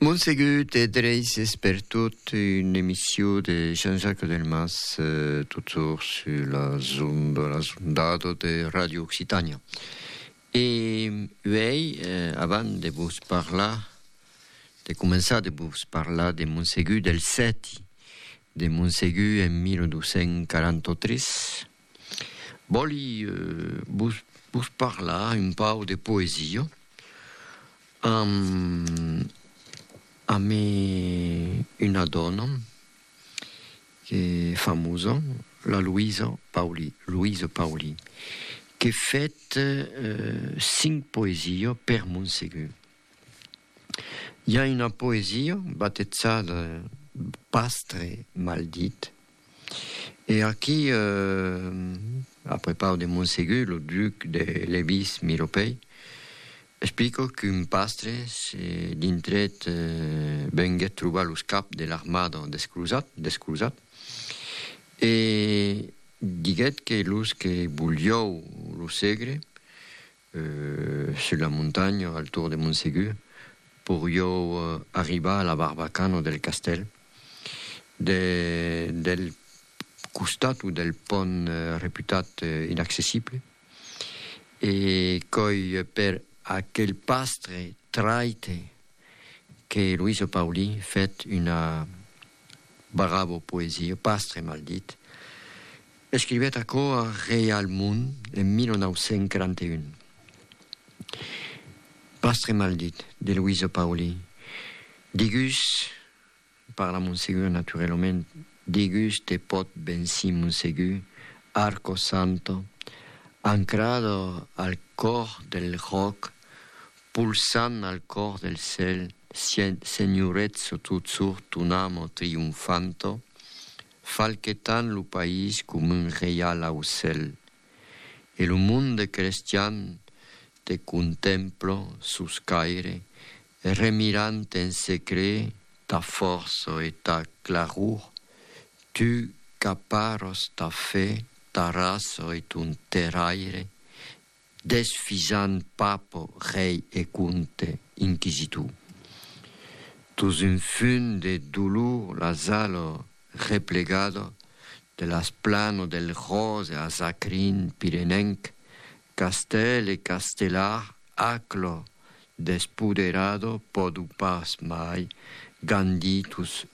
Montsegut e Dreyses per tot, una emission de Jean-Jacques Delmas, totjorn sur las ondes, las ondadas de Radio Occitània. E uèi, avant de vos parlar, de començar de vos parlar de Montsegut del Sèti, de Montsegut en 1243, Vòli vos parlar un pauc de poesia amb una dòna que famosa, la Luisa Pauli, Louise Pauli, que fèt cinc poesia per Montsegur. I a una poesia batejada Pastre maldit e aquí a prepau de Monsegur lo duc de Levís Milopei explica qu'un pastre se dintrèt venguèt trobar los caps de l'armada desclosat e diguèt que los que voliáu lo segre Sus la montanha, al tour de Montsegur, poriou arribar a la barbacana del castèl. Del costat o del pònt reputat inaccessible, e coi per aquel pastre traite que Luiso Paulí fèt una bravo poesia, Pastre maldit, Escrivèt aquò a Reial Mond en 1941. Pastre maldit de Luiso Pauli, digus, parla Monsegur naturelament, digus te pòt bensí Monsegur, arco santo, ancrado al còr del ròc, pulsant al còr del cèl, Sen, Senhorètzo tu tsur tunamo triunfanto, Falquetant lo país com un reial aucèl. E lo monde crestian te contempla sus caire, remirant en secret ta fòrça e ta claror, tu qu'aparas ta fe, ta raça e ton terraire, Desfisant Papo, rei e comte inquisitor. Tos un fum de dolor las alò replegado de las plano del Rose a Sacrin pirenenc, castèl e castelar aqulo despoderado podu pas mai gandir tos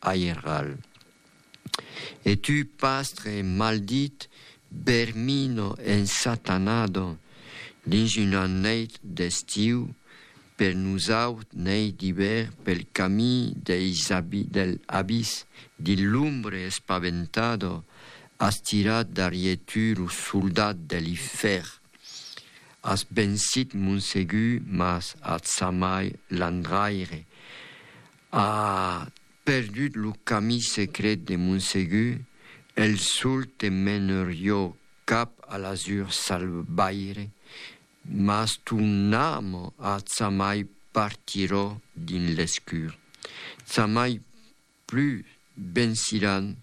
Airral. E tu, pastre maldit, vermino ensatanado, dins una neit d'estiu, per nosaut neit d'ivèr pel camí deis del abís dil lumbre espaventado, as tirat darrier tu lo soldat de l'ifèrn. As vencit Monsegur mas atzamai l'Andraire. A perdut lo camí secret de Montsegur, el sol te menerió cap a l'azur salvaire, mas ton amo atzamai partiró dins l'escur. Tzamai plus venciràn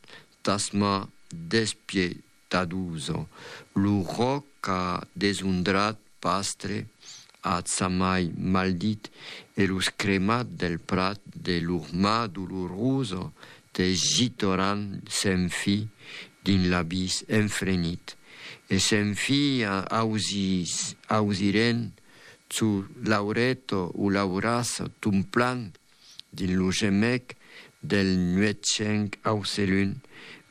tas mans despièch Taduso, lo ròc a desondrat Pastre, ath samai maldit, e los cremat del prat de lor mà dolorosa te jitoran sen fi dins l'abís enfrenit, e sen fi ausiren çò l'aureto o l'aurassa ton plan dins lo gemec del nuetjenc aucelun,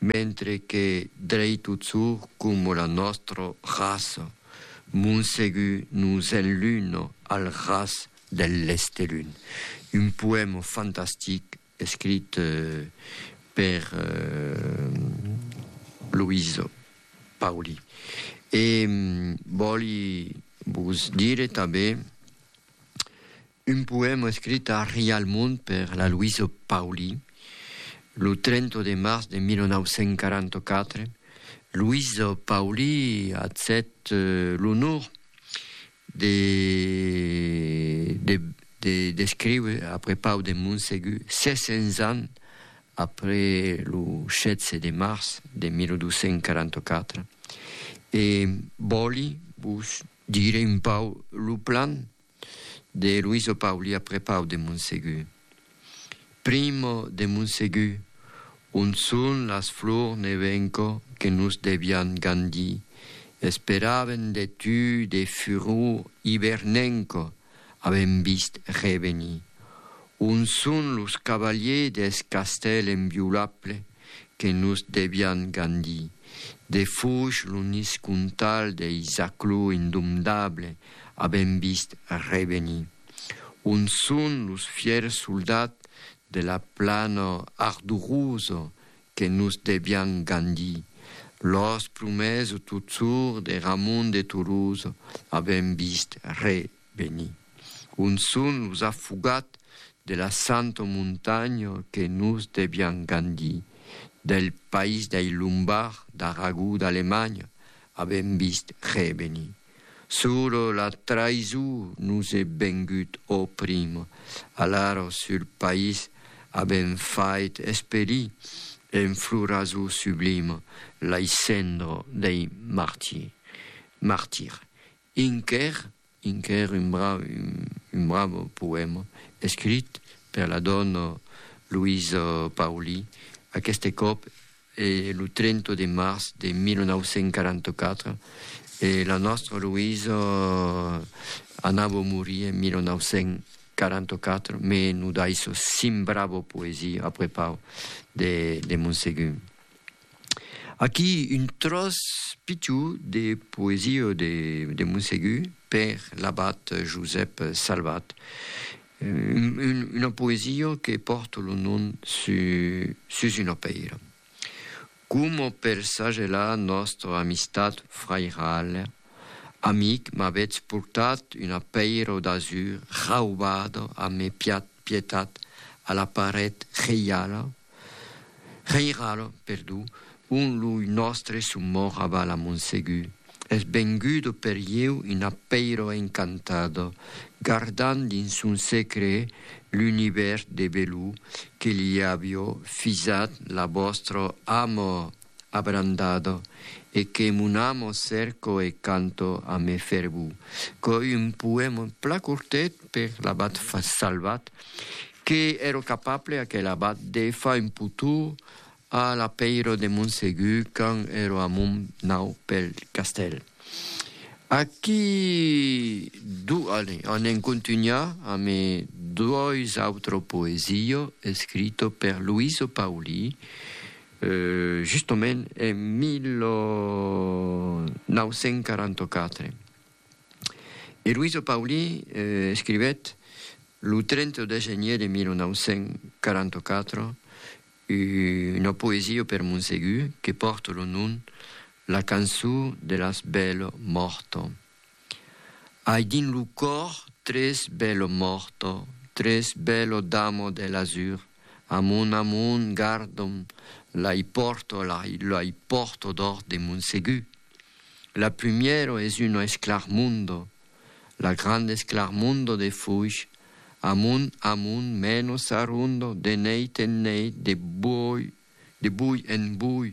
mentre que dreitotjor coma la nòstra raça, Montsegur nos enluna al ras del lestelun. Un poèma fantastic escrit per Luiz Pauli. E vòli vos dire tanben Un poèma escrit a Rialmond per la Luiso Pauli, lo 30 de març de 1944, Luiso Pauli accèpt l'onor de de descriure après Pau de Montsegur, 600 ans après lo 16 de març de 1244, e vòli vos dire un pauc lo plan. De Luiso Pauli a prepau de Monsegur. Primo de Monsegur, on son las flors ne venco que nos devián gandir, esperaven de tu de furor ivernenco avèm vist revenir. On son los cavaliers deth castèl enviolables que nos devián gandir. De fouch lo nis contal dei Zaclo indomdable avèm vist revenir. On son los fièrs soldats de la plana ardurosa que nos devián gandir? Los prumèrs totsors de Ramon de Tolosa avèm vist re Veni. Un son los a fugat de la santa montanha que nos devián gandir, del país dei Lombards d'Aragó d'Alemanha, avèm vist reveni. Sur la traisó nos è vengut ò prim, alara sul país avèm fait esperir en floraso sublim lei cendra dei martirs. Inker, Inker, un brau, un bravo poèma escrit per la dòna Luisa Pauli, aqueste còp e lo 30 de març de 1944, e la nòstra Luisa anava morir en 1944, me no daisso cinc bravo poesia a prepau de de Monsegun. Aquí un tròç pichou de poesia de Monsegur per l'abat Josèp Salvat, una poesia que pòrt lo nom sus una pèira, coma per sagelar nòstra amistat frairala, Amic, m'avètz portat una pèira d'azur raubada a mes pietat a la paret reiala? Reiralo, perdó, on lo nòstre son mòr aval a Montsegu, es vengudo per ieu un apeiro encantado, gardant dins son secre l'univèrs de velú que li avió fisat la vòstra amor. abrandado e que mon amo cerco e canto a me fer bu co un poèm pla cortet per l'abat Salvat que ero capable aquel abat de fa un putú a la peiro de Montsegu quand ero a mon nau pel castèl. Aquí du ale a n'en contunhar a me dois autro poesio escrito per Luiso Pauli Justament en 1944. E Luiso Pauli escrivèt lo 30 de genier de 1944 una poesia per Monsegur que pòrta lo nom La cançó de las bèl morto. Ai dins lo còr tres bello morto, tres bello damo de l'azur, amont amont gardom, l'ai pòrto, l'ai pòrto dòrt de mon segur. La prumièro es una esclarmondo, la granda esclarmondo de fuch, amont amont meno s'arrondo de neit en neit, de bui en bui,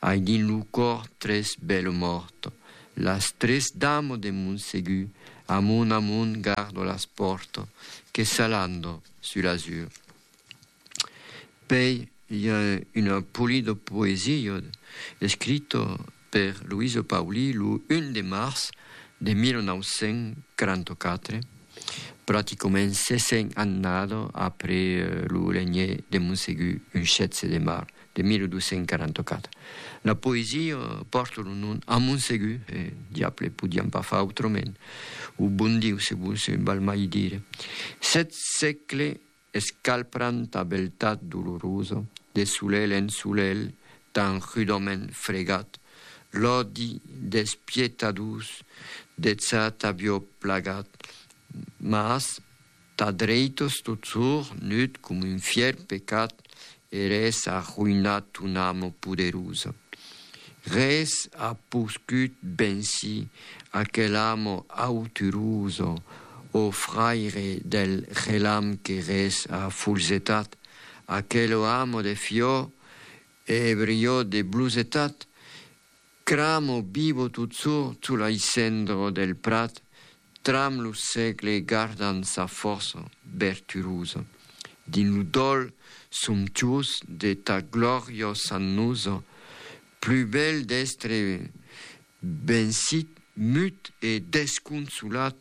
Ai dins lo còr tres bèlo mòrt. Las tres damo de mon segur. Amont amont gardo las pòrt. Que s'alando sus l'azur. Pei i a un polido poesio escrito per Luiso Pauli lo 1 de març de 1944, praticoment 60 annado après lo legné de Monsegur un 16 de març de 1244. La poesia pòrta lo nom a Montsegur, e diable, podiam pas far autrament, o bon Diu, se volse val mai dire. Sèt sègle escalpranta beltat dolorosa, de solelh en solelh tan rudament fregat, l'òdi despietadós deth sat avió plagat, mas, Tà dreitos totjorn nut com un fièr pecat eres arroïnat ton amo poderosa. Res a poscut bensir aquel amo auturosa, ò fraire del relam que res a folzetat, aquelo amo de fior e ebriò de blosetat, cramo vivo totjorn tolaissendro del prat Tram lo sègle gardan sa fòrça verturosa. Dins lo dòl somptuós de ta gloriosa nosa, plus bèl d'èstre vencit, mut e desconsolat,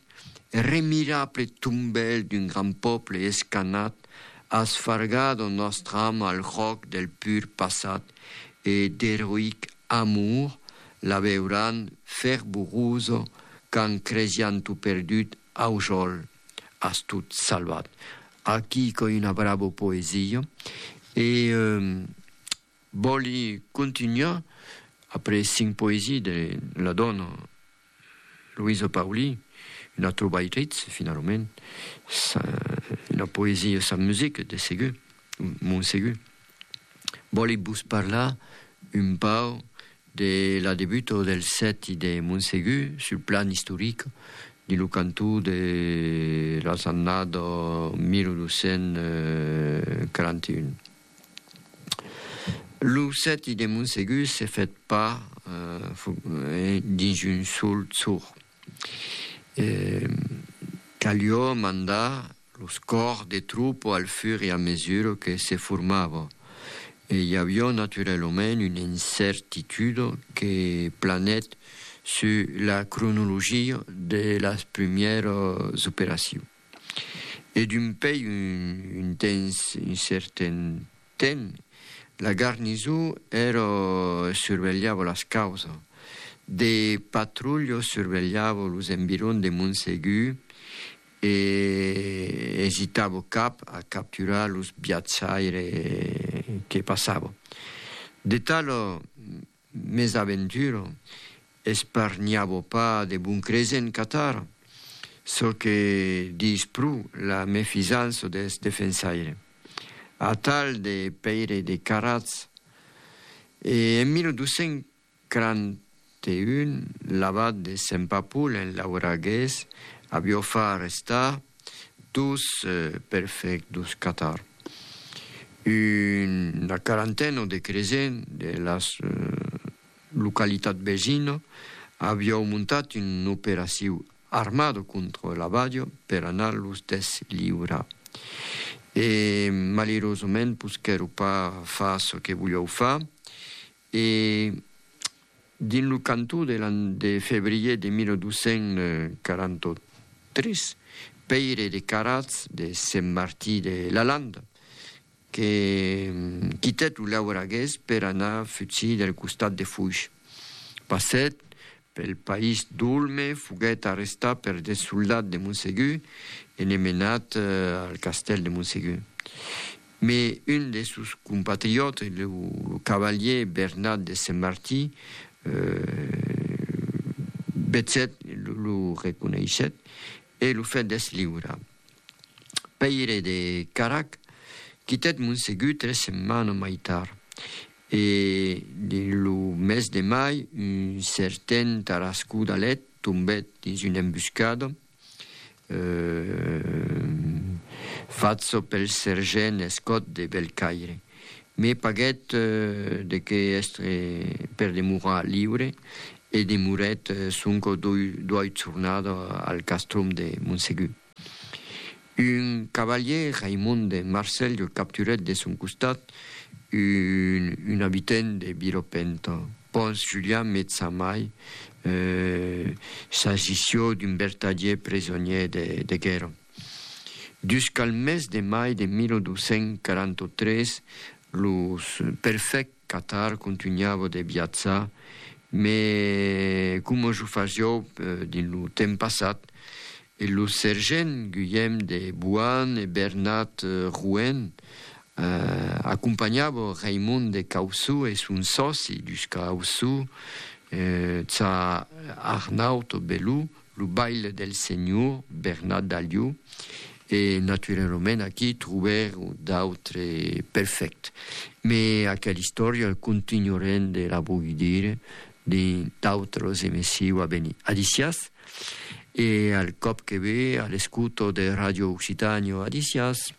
remirable tombèl d'un grand pòble escanhat, as fargat en nòstra ama el jòc del pur passat e d'eroïc Amor, la veuràn fervorosa qu'an cresián tot perdut, aujòl, as tot salvat. Aquí qu'ai una brava poesia e vòli contunhar après cinc poesies de la dòna. Luiso Pauli, una trobaitritz, finalament, una poesia sans musica, de segur, mon segur. Vòli vos parlar un pauc de la debuta del sèti de mon segur sul plan istoric dins lo cantó de las annadas 1241. Lo sèti de Montsegur se fèt pas dins un sol jorn. Calió mandar los còrs de tropa al fur e a mesura que se formava e i avió naturalament una incertituda que planèt sus la cronologia de las primièras operacions. E d'un pei un temps, un certen temps, la garniso ero survelhavo las causa. De patrulho survelhavo los environs de Montsegu e esitavo cap a capturar los viatjaires que passavo. De talo Mes aventura, esparnhava pas de bon cresent Qatar, çò que diis pro la mefisança deth defensaire, atal de Pèire de Carats, e en 1241 l'abat de Sempapul en Lauragués avió far estar Dos perfèct dos catar. Una quarantena de cresent de las localitat vesina aviau montat un operaciu armada contra la Badia per anar los desliurar. E malerosament posquèro pas far çò que voliau far E dins lo cantó de l'an de febrier de 1243, Pèire de Caratz de Sent Martí de la Landa, que quitèt lo Lauragués per anar futsir del costat de Foish, passèt Pel país d'Olme foguèt arrestat per de soldats de Monsegur e ne menat al castèl de Monsegur. Me un de sos compatriòtes, lo cavalier Bernat de Senmartí, vecèt, lo reconeishèt e lo fèt desliurar. Pèire de Carac quitèt Monsegur tres setmanas mai tard E dins lo mes de mai, un certen Tarascú d'Alet tombèt dins una embuscada. Fach çò pel sergent Escot de Belcaire. Me paguèt de qué èstre per demorar liure e demorèt sonque o doiu jornada al castrum de Montsegur. Un cavalier, Raimond de Marselh, que capturèt de son costat un abitent de Vilopenta. Pons Julian me Tsamai s'agissió d'un bertadier presonier de guèrra. Dus qu'al mes de mai de 1243 los perfècts Qatar contunhava de viatjar, me coma jo fasiou dins lo temps passat, e los sergents Guillem de Boan e Bernat Rouen acompanhava Raimond de Caussou e son sòci dus Caussou, Tsar Arnaut Belou, Lo baile del senhor Bernat d'Aliu e naturalament aquí trobèron d'autre perfèct, me aquel istòria el continuarem de la boidir dins d'autros emessiu a venir. Adicias e al còp que ve a l'escouto de Radio Occitània Adicias.